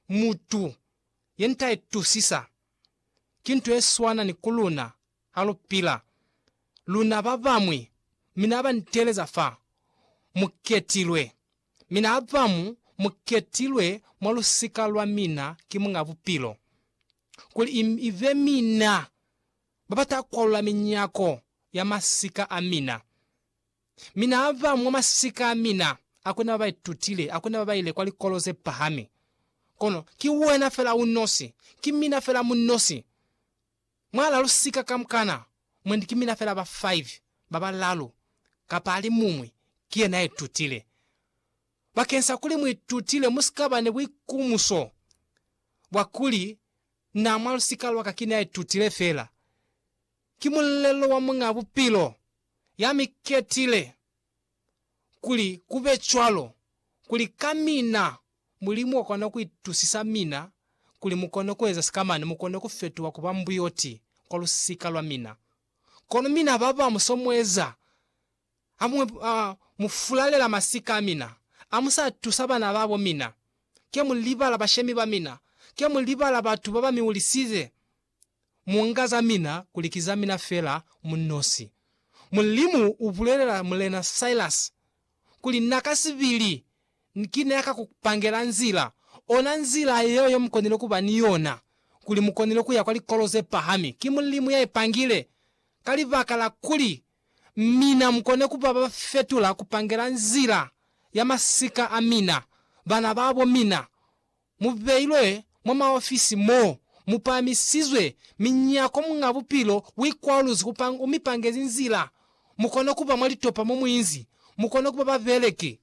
mutu yentaitusisa. Ki nto yeswana ni ku luna ha lupila, luna babañwi, mi na ba nteleza fa mu ketilwe, mi na ba mu mu ketilwe mwa lusika lwa mina ki Muñ'a Bupilo, kuli i, i be mina ba ba ta kwalula minyako ya masika a mina. Mi na ba mwa masika a mina, hakuna ba ba itutile, hakuna ba ba ile kwa likolo ze pahami. Kono ki wena fela u nosi, ki mina fela mu nosi. Mwa la lusika kamukana, mwendi ki mina fela ba five, ba balalu, kapa alimuñwi, ki yena ya itutile. Bakensa kuli mu itutile, mu si ka ba ni buikumuso bwa kuli, Na, mwa lusika lwa ka, ki na ya itutile fela. Ki mulelo wa Muñ'a Bupilo, ya mi ketile kuli ku be cwalo, kuli ka mina Mulimu wa kona ku itusisa mina kuli mu kone ku eza sikamane, mu kone ku fetuha ku ba mbuyoti kwa lusika lwa mina. Kono mina ba ba mu so mu eza, hamuñwi a mu fulalela masika a mina, a mu sa tusa bana ba bo mina, ke mu libala bashemi ba mina, ke mu libala batu ba ba mi hulisize. mu nga za mina kuli ki za mina fela mu nosi. Mulimu u bulelela Mulena Silas kuli na ka sibili ki ne a ka ku pangela nzila, ona nzila yeo ye mu konile ku ba ni yona, kuli mu konile ku ya kwa likolo ze pahami. Ki Mulimu ya i pangile, ka libaka la kuli mina mu kone ku ba ba fetula ku pangela nzila ya masika a mina, bana ba bo mina, mu beilwe mwa maofisi mo mu pahamisizwe minyako Muñ'a Bupilo u ikwaluzwi ku panga, u mi pangezi nzila mu kone ku ba mwa litopa mo mu inzi mu kone ku ba babeleki,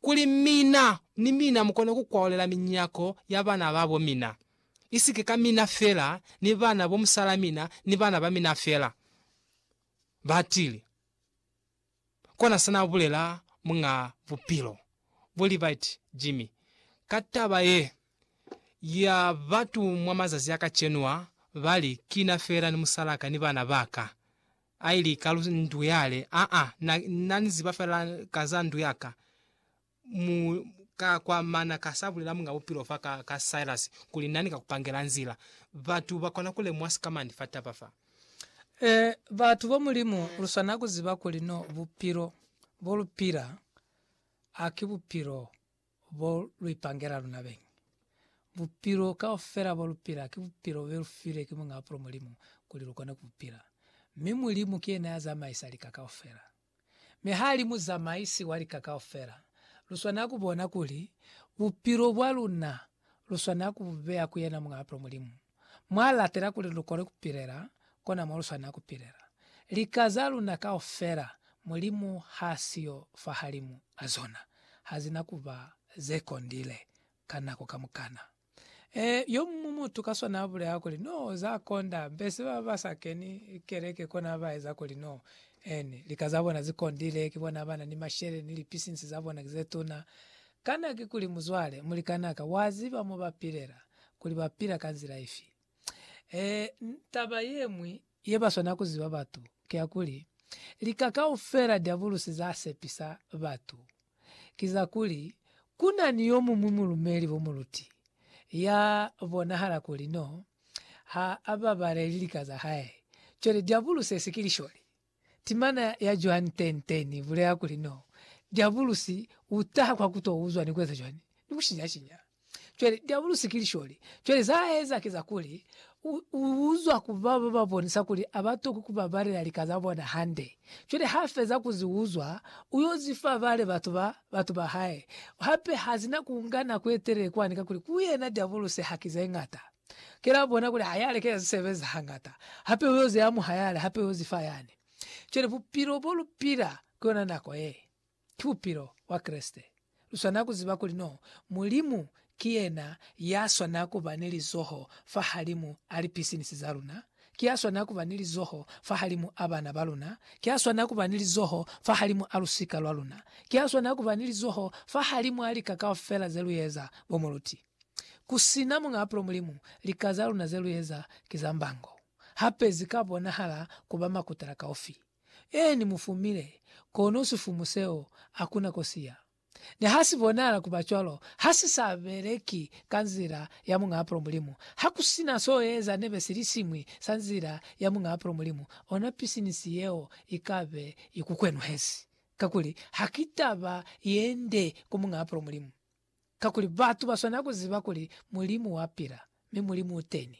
kuli mina ni mina mu kone ku kwaolela minyako ya bana ba bo mina, isike ka mina fela ni bana bo musalamina ni bana ba mina fela. Batili. Kona sa n'a bulela muñ'a bupilo bo libaiti Jimmy ka taba ye ya batu mwa mazazi a kacenu a, ba li, Ki na fela ni musal'a ka ni bana ba ka. A ili ka lu ndu yale, Aa, na, na ni ziba fela ka za ndu ya ka. mu ka kwa mana ka sa bulela Muñ'a Bupilo fa ka, ka Silas, kuli nani ka ku pangela nzila. Batu ba kona ku lemuha sikamani fa taba fa. Ee, batu ba Mulimu, lu swanela ku ziba kuli no bupilo bo lu pila ha ki bupilo bo lu ipangela luna beñi. Bupilo kaufela bo lu pila ki bupilo bo be lu filwe ki Muñ'a Bupilo Mulimu kuli lu kone ku bu pila. Mi Mulimu ki yena ya zamaisa lika kaufela. Mi ha li Muzamaisi wa lika kaufela, lu swanela ku bona kuli bupilo bwa luna lu swanela ku bu beya ku yena Muñ'a Bupilo Mulimu, mw'a latela kuli lu kone ku pilela kona mo lu swanela ku pilela. Lika za luna kaufela Mulimu h'a siyo fahalimu a zona, ha zina ku ba ze kondile ka nako kamukana. E, yo muñwi mutu ka swana abulela kuli, No, za konda, mbese baba ba sa keni keleke kona ba eza kuli no ene. Lika za bona zi kondile, ki bona abana ni mashele, ni lipisinsi za bona ki ze tuna. Kana ki kuli, muzwale, mulikanaka, wa ziba mo ba pilela, kuli ba pila ka nzila ifi? E, taba yeñwi, Ye ba swana ku ziba batu ki ya kuli, lika kaufela Diabulusi za sepisa batu ki za kuli ku na ni yo muñwi mulumeli bo muluti ya bonahala kuli n'o ha a babaleli lika za hae. Cwale Diabulusi ye si ki lisholi. Timana ya Johan Ten Ten i bulela kuli n'o Diabulusi u taha kwa ku t'o uzwa ni ku eza cwani? Ni ku shinya-shinya. Cwale diabulusi ki lisholi. Cwale za eza ki za kuli, u, u uzwa ku ba ba ba bonisa kuli a ba toki ku babalela lika za bona hande. Cwale ha feza ku zi uzwa, u yo zi fa bale batu ba, batu ba hae. Hape ha si na ku nga nako ye telele kwani, kakuli ku yena diabulusi ha ki ze ñata. Ki la bona kuli ha ya lekeza zi sebeza hañata. Hape u yo zi amuha yale, hape u yo zi fa yani. Cwale bupilo bo lu pila, ku yona nako ye. ki bupilo bwa Kreste. Lu swanela ku ziba kuli no Mulimu ki yena ya swanela ku ba ni lizoho fahalimu a lipisinisi za luna, ki ya swanela ku ba ni lizoho fahalimu a bana ba luna, ki ya swanela ku ba ni lizoho fahalimu a lusika lwa luna, ki ya swanela ku ba ni lizoho fahalimu a lika kaufela ze lu eza. Bo moluti, ku si na Muñ'a Bupilo Mulimu, lika za luna ze lu eza ki za mbango, hape zi ka bonahala ku ba makutala kaufi. Ee, Ni mu fumile, kono sifumu seo hakuna ko si ya. Ni ha si bonahala ku ba cwalo, ha si sa beleki ka nzila ya Muñ'a Apolo Mulimu. Ha ku si na s'o eza nebe silisiñwi sa nzila ya Muñ'a Apolo Mulimu, ona pisinisi yeo i ka be i ku kwenuhezi, kakuli ha ki taba ye nde ku Muñ'a Apolo Mulimu. Kakuli batu ba swanela ku ziba kuli Mulimu wa pila, mi Mulimu u teni.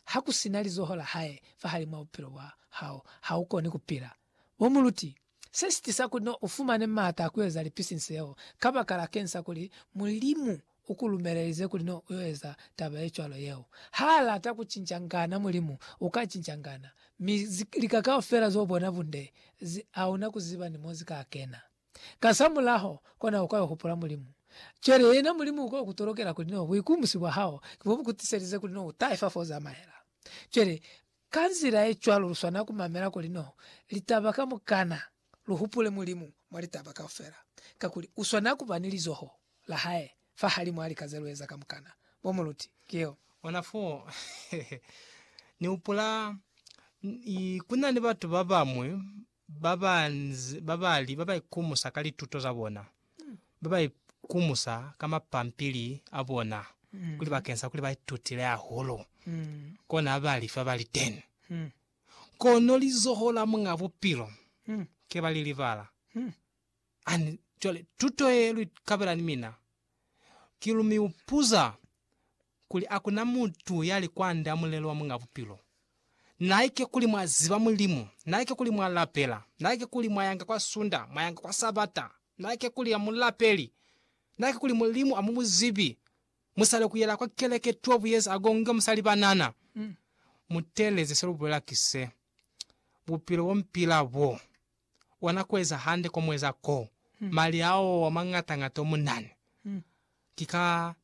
Ha ku si na lizoho la hae fahalimw'a bupilo bwa hao, ha u koni ku pila. Bo muluti, se si tisa kuli n'o u fumane m'ata a ku eza lipisinsi yeo, kabakala keñi sa kuli Mulimu u ku lumelelize kuli n'o u yo eza taba ye cwalo yeo? Ha a lata ku cinca ngana Mulimu, u ka cinca ngana. Mi lika kaufela z'o bona bunde zi, hauna ku ziba ni mo zi ka kena. Kasamulaho, kona uka yo hupula Mulimu. Cwale yena Mulimu uka yo ku tolokela kuli no buikumusi bwa hao ki bo bu ku tiselize kuli no u tahe fa fo u zamaela. Cwale, ka nzila ye cwalo lu swanela ku mamela kuli no litaba kamukana, lu hupule Mulimu mwa litaba kaufela, kakuli u swanela ku ba ni lizoho la hae fahalimw'a lika ze lu eza kamukana. Bo muluti, ki yeo. Ona fo ni hupula, ku na ni batu ba bañwi ba banzi ba ba li ba ba ikumusa ka lituto za bona, ba ba ikumusa ka mapampili a bona kuli bakeng sa kuli ba itutile hahulu, kona ha ba li fa ba li teni. Kono lizoho la Muñ'a Bupilo ke ba li libala. Ani, cwale, tuto ye lu ikabela ni mina, ki lu mi upuza, kuli a ku na mutu ya li kwand'a mulelo wa Muñ'a Bupilo. Naike kuli mwa ziba Mulimu, naike kuli mwa lapela, naike kuli mwa yanga kwa Sunda, mwa yanga kwa Sabata, naike kuli a mu lapeli, naike kuli Mulimu a mu mu zibi, mu sale ku yela kwa keleke tuo buyeza agonge mu sa li banana. Mu teeleze se lu bulela ki se, Bupilo bo mu pila bo, ona ku eza hande ko mu eza ko, mali ao a mañata-ñata o mu na ni, ki ka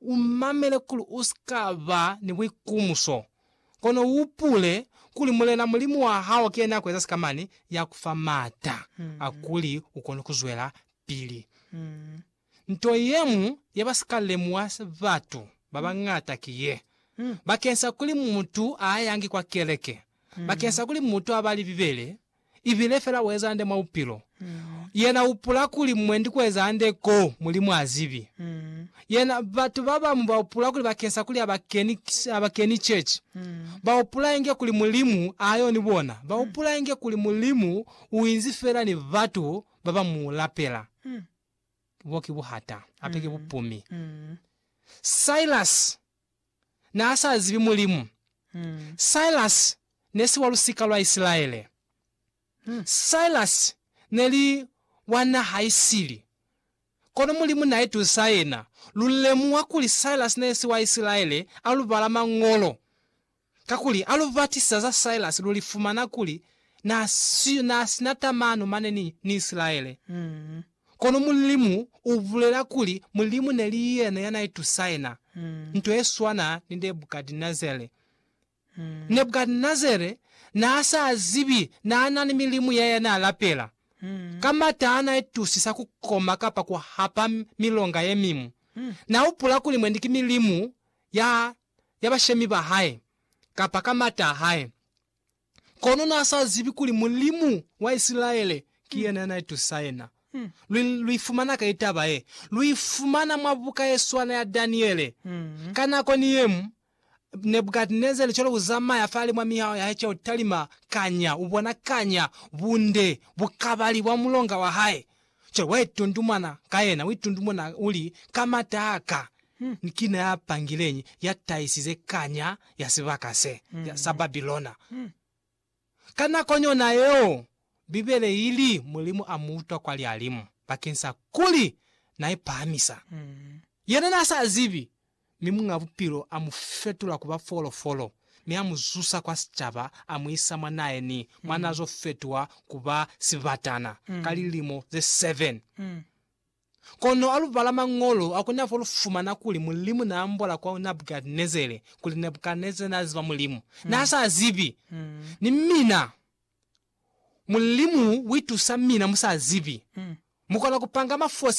umamele kuli usika ba ni buikumuso, kono uupule kuli Mulena Mulimu wahao ki yena ya kueza sikamani, ya kufa maata a kuli ukone kuzwela pili. Nto yeñwi yeba sika lemuha batu babañata ki ye, bakeng sa kuli mutu aayangi kwa keleke, bakeng sa kuli mutu abali Bibele, ibile fela ueza hande mwa bupilo. Yena uhupula kuli mwendi kueza hande ko Mulimu azibi. Yena, batu babamu bahupula kuli bakeng sa kuli abakeni, abakeni church, bahupula inge kuli Mulimu ayo ni bona. Bahupula inge kuli Mulimu uinzi fela ni batu baba mu lapela. Bo ki buhata, hape ki bupumi. Silas naasazibi Mulimu. Silas nesi wa lusika lwa Isilaele. Silas neli wa naha isili. Kono Mulimu naitusa yena. Lulemuha kuli Silas nesi wa Isilaele alubala Mañolo. Kakuli ha lu batisa za Silas lu li fumana kuli n'a siyo n'a si na tamano mane ni, ni Isilaele. Kono Mulimu u bulela kuli Mulimu ne li yena ya n'a itusaina nto ye swana ni Nebukadnezare. Nebukadnezare n'a sa zibi n'a na ni milimu ya ye n'a lapela. Ka m'ata ha n'a itusisa ku koma kapa ku hapa milonga ye miñwi, n'a hupula kuli mwendi ki milimu ya ya bashemi ba hae kapa ka m'ata a hae. Kono n'a sa zibi kuli Mulimu wa Isilaele ki yena ya n'a itusa yena. Lu, lu i fumana kai taba ye? Lu i fumana mwa buka ye swana ya Daniele. Ka nako ni ye mu, Nebukadnezare cwale u zamaya fale mwa mihaho ya hae ca ku talima kanya, u bona kanya bunde bukabali bwa mulonga wa hae. Cwale wa itundumana ka yena, u itundumuna u li, Ka mataa ka, ni kina ya pangileñi ya tahisize kanya ya sibaka se, ya, sa Babilona? Ka nakoni yona yeo, Bibele i li, Mulimu a mu utwa kwa lialimu, bakeng sa kuli na ipahamisa. Yena n'a sa zibi. Mi Muñ'a Bupilo a mu fetula ku ba folofolo, mi a mu zusa kwa sicaba, a mu isa mwa nae ni mwa n'a zo fetuha ku ba sibatana ka lilimo ze seven. Kono ha lu bala Mañolo, ha ku na fo lu fumana kuli Mulimu n'a ambola kwa Nabukadnezere kuli Nabukadnezere n'a ziba Mulimu. N'a sa zibi. Ni mina, Mulimu u itusa mina mu sa zibi. Mu kona ku panga mafosi.